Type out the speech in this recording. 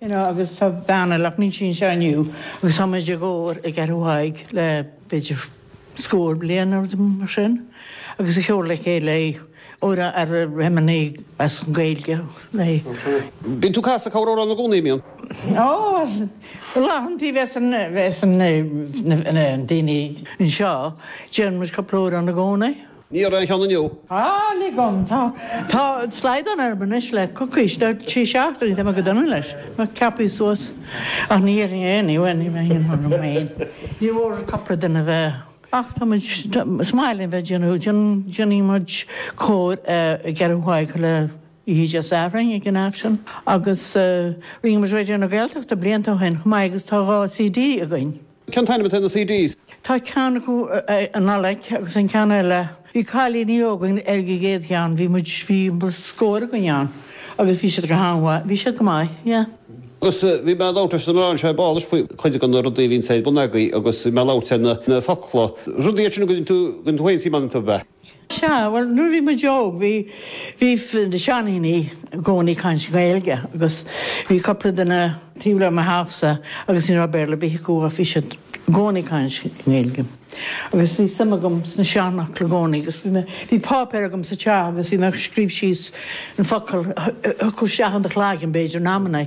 You know, agus tá bean eile ach níl sí anseo inniu agus tá muid i gcór i gCeathrú Thaidhg le b'fhéidir scór bliain nó rud mar sin agus ag ceol le chéile é óir a raibh imní as an Gaeilge le. Bíonn tú ag casadh cúpla amhrán i gcónaí, an mbíonn? Ó, go leathan taobh as an, as an, na, na, na daoine anseo, déanann muid cúpla amhrán i gcónaí. Níor fhan cheann inniu. Ah, lig dhom, tá, tá slaghdán orm anois le coicís, nó trí seachtainí, tá mé go dona leis, ná ceapaí suas, ach ní dhéanfaidh aon ní, bhuel, ní bheidh aon ní orm féin, ní mhór cupla duine a bheith, ach tá muid, tá, is maith linn bheith ag déanamh, déan, déanfaidh muid cór i gCeathrú Thaidhg chuile oíche Dé Sathairn ag an Aifreann, agus, eh, rinne muid Raidió na Gaeltachta blianta ó shin chomh maith agus tá dhá CD againn. Cén t-ainm atá ar na CDs. Tá ceann acu an Nollaig agus an ceann eile, bhí cailíní óga ag an gcéad cheann, bhí muid, bhí scór againn ann agus bhí siad go han-mhaith, bhí siad go maith, yeah. Agus bhí mé a' labhairt leis na mná anseo ar ball faoi chuid de na rudaí a bhíonns ar bun agaibh agus bhí mé a' labhairt ar na focla, rudaí iad sin a gcuireann tú, a gcuireann tú féin suim ann iontu, ab ea? Sea, bhuel, nuair a bhí muid óg, bhí, bhí na seandaoine í gcónaí ag caint Gaeilge agus bhí cupla duine taobh le mo theach-sa agus ní raibh Béarla ar bith acu ach bhí siad i gcónaí ag caint i nGaeilge. Agus bhí suim agam sna seanfhocla i gcónaí agus bhí mé, bhí páipéar agam sa teach agus bhí mé ag scríobh síos na focail a thiocfadh isteach in do chloigeann, b'fhéidir, in amannaí.